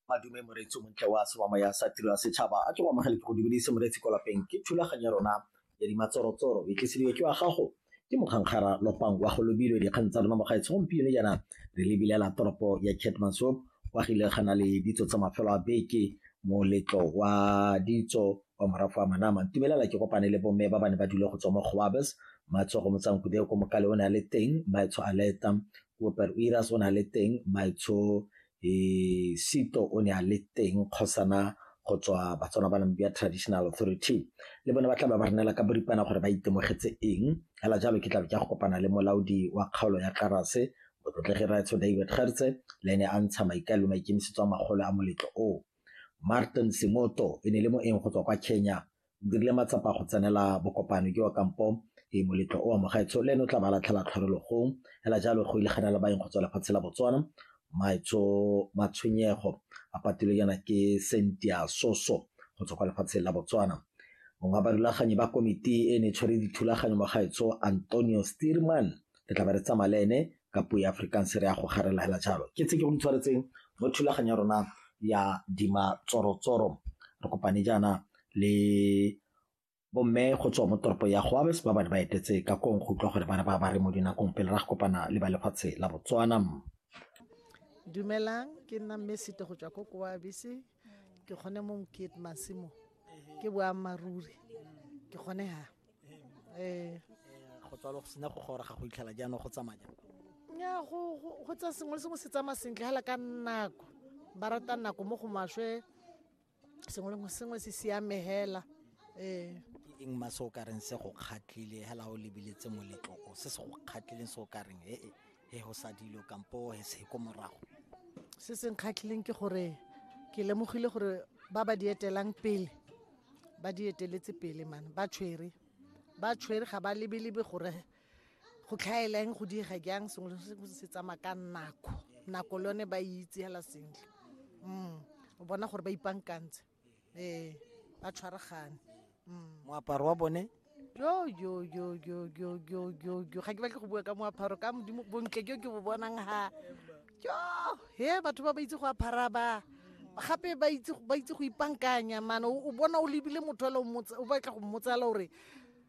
madume moreetsi o montle wa semama ya sa tiro ya setšhaba a ke go amogele ke go dumedise moreetsi ko lapeng ke thulaganyo ya rona ya dimatsorotsoro e tlisediwe ke wa gago ke mokgankgara lopang wa go lobilwe dikgang tsa rona mo gaetsho gompieno jaana re lebilela toropo ya catmansop kwa gile gana le ditso tsa mafelo a beke moletlo wa ditso wa morago wa manama ntumelela ke kopane le bomme ba ba ne ba dule go tswa mo goabes matsogo motsankude ko mokale o ne a le teng maetsho a leta Robert Uiras o ne a le teng, Maitsho eh, Sito o ne a le teng kgosana go tswa batswana ba namibia traditional authority le bone ba tla ba ba renela ka boripana gore ba itemogetse eng fela jalo ke tlabe ke go kopana le molaodi wa kgaolo ya karase motlotlegi raetsho david gertse le ene a ntsha maikaelo maikemisetso a magolo a moletlo o martin semoto e ne le moeng go tswa kwa kenya dirile matsapa go tsenela bokopano ke wa kampo e moletlo o amogaetsho le ene o tla ba latlhela tlhorologong fela jalo go ile gana le baeng go tswa lefatshe la botswana maetsho matshwenyego a patilwe yana ke sentia soso go tswa kwa lefatsheng la botswana mongwe wa barulaganyi ba komiti e ne tshwere dithulaganyo mogaetsho antonio steerman re tla ba re tsamaya le ene ka puo ya afrikaans re ya go garela hela jalo ke tse ke go tshwaretseng mo thulaganyo ya rona ya dima tsorotsoro re kopane jaana le bo mme go tswa mo toropo ya Goabes ba bane ba etetse ka koo go utlwa gore bana ba ba re mo dinakong pele ra go kopana le ba lefatshe la Botswana. Dumelang ke nna mme Sito go tswa ko Goabes ke kgone mo Mokete Masimo ke boammaaruri ke kgone ha eh go tswa lo sena go gora ga go itlhela jaanong go tsamaya nya go go tsa sengwe le sengwe se tsamaya sentle hala ka nako ba rata nako mo go maswe sengwe le sengwe se siame hela ee ke eng ma se o ka reng se go kgatlhile hela o lebeletse moletlo o se se go kgatlhileng se o ka reng he he go sa dilo kampo he se ko morago se se nkgatlhileng ke gore ke lemogile gore ba ba di etelang pele ba di eteletse pele mane ba tshwere ba tshwere ga ba lebelebe gore go tlhaeleng go diega jang sengwe le sengwe se tsamaya ka nako nako le yone ba e itse hela sentle mm o bona gore ba ipankantse ee ba tshwaragane mm. moaparo wa bone yo yo yo yo yo yo yo yo ga ke batle go bua ka moaparo ka modimo bontle jo ke bo bonang ha jo he batho ba ba itse go apara ba gape ba itse go ipankanya mane o bona o lebile motho o batla go mmotsala gore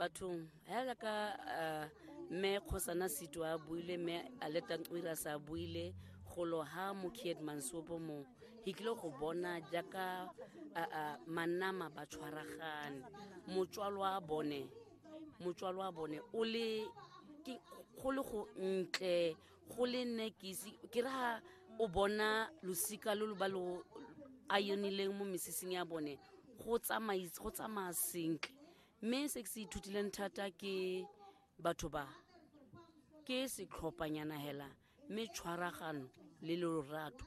bathong hela ka eh, mme kgosana seto a buile mme aletanqwira sa buile golo ha mokied mansopo mo he tlile go bona jaaka eh, eh, manama ba tshwaragane motswalo wa bone motswalo wa bone o le go le go ntle go le nne ke ise ke re ha o bona losika lo lo ba lo a yonileng mo mesesing ya bone go tsamaya sentle mme se ke se ithutileng thata ke batho ba ke setlhophanyana hela mme tshwaragano le lorato